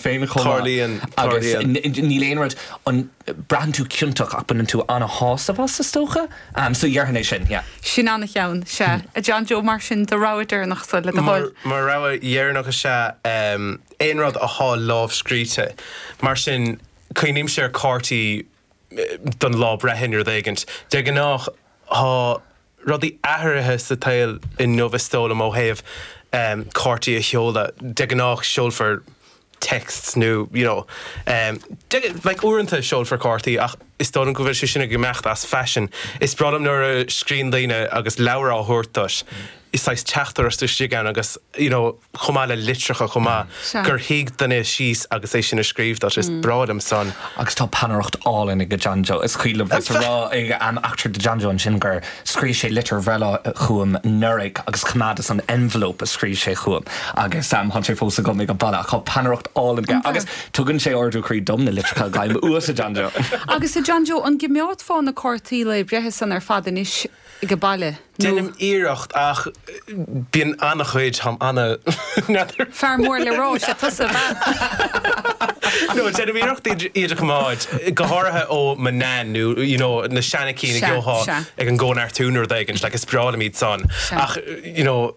féin chomh maith. Tarlaíonn, agus tarlaíonn. níl aon rud, an, braitheann tú ciontach ach baineann tú an-shásamh as, is dócha, so déarfainn é sin, yeah. Sin an-cheann, sea. A John Joe, mar sin, do rogha deireanach so, le do thoil? Mo rogha dheireanach is ea aon rud athá lámhscríte. Mar sin, cuimhnímse ar chártaí don lá breithe nó rud éigint. De ghnáth, thá. rudaí athraithe sa tsaol inniu is dóigh liom ó thaobh cártaí a sheoladh. De ghnáth seolfar texts nó you know like uaireanta seolfar cártaí ach is dóigh liom go bhfuil sé sin ag imeacht as fashion. Is breá liom nuair a scríonn daoine agus leabhar á thabhairt duit, saghas teachtaireacht istigh ann agus you know. chomh maith le litreacha chomh maith, gur shuigh duine síos agus é sin a scríobh duit. Is breá liom san. Agus tá peannaireacht álainn ag John Joe. Is cuimhin liom bheith ag rá an eachtra do John Joe ansin gur scríobh sé litir bhreithlae chugam anuraidh agus coimeádas an envelope a scríobh sé chugam agus tá sé fós agam ag baile. Ach tá peannaireacht álainn aige agus tugann sé ardú croí dom na litreacha a fhaighim uait a John Joe. Agus a John Joe, an gcoimeádfá na cártaí lae breithe san ar fad anois? aige baile nó. Deinim iarracht ach bíonn an-chuid, táim an-. Fear mór le rá, sé tusa, bean. No, deinim iarracht iad a choimeád, go háirithe ó mo Nain nó you know na seana cinn a gheobhthá ag an gCóineartú nó rud éigint, like is breá liom iad san ach you know.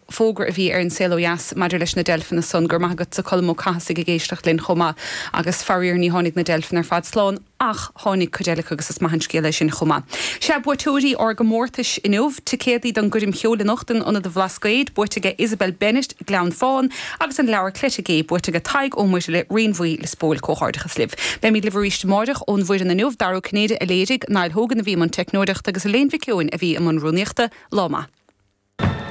fógra a bhí ar an Saol Ó Dheas maidir leis na deilfeanna san, go raibh maith agat-sa Colm Ó Cathasaigh ag éisteacht linn chomh maith agus faraor ní tháinig na deilfeanna ar fad slán ach tháinig cuid eile acu agus is maith an scéal é sin chomh maith. Sea, buaiteoirí ár gcomórtais inniu, ticéadaí don gcoirm cheoil anocht in Ionad a Bhlascaoid buaite aige Isabel Bennett, Gleann Fán, agus an leabhar Cleite Gé buaite aige Tadhg Ó Muircheartaigh, Rinn Bhuí, Liospóil. Comhghairdeachas libh. Beimíd libh arís amáireach ón bhfoireann inniu, Dara Ó Cinnéide a léirigh, Niall Hogan a bhí i mbun teicneoireachta agus Elaine Mhic Eoin a bhí i mbun rúnaíochta. Lá maith.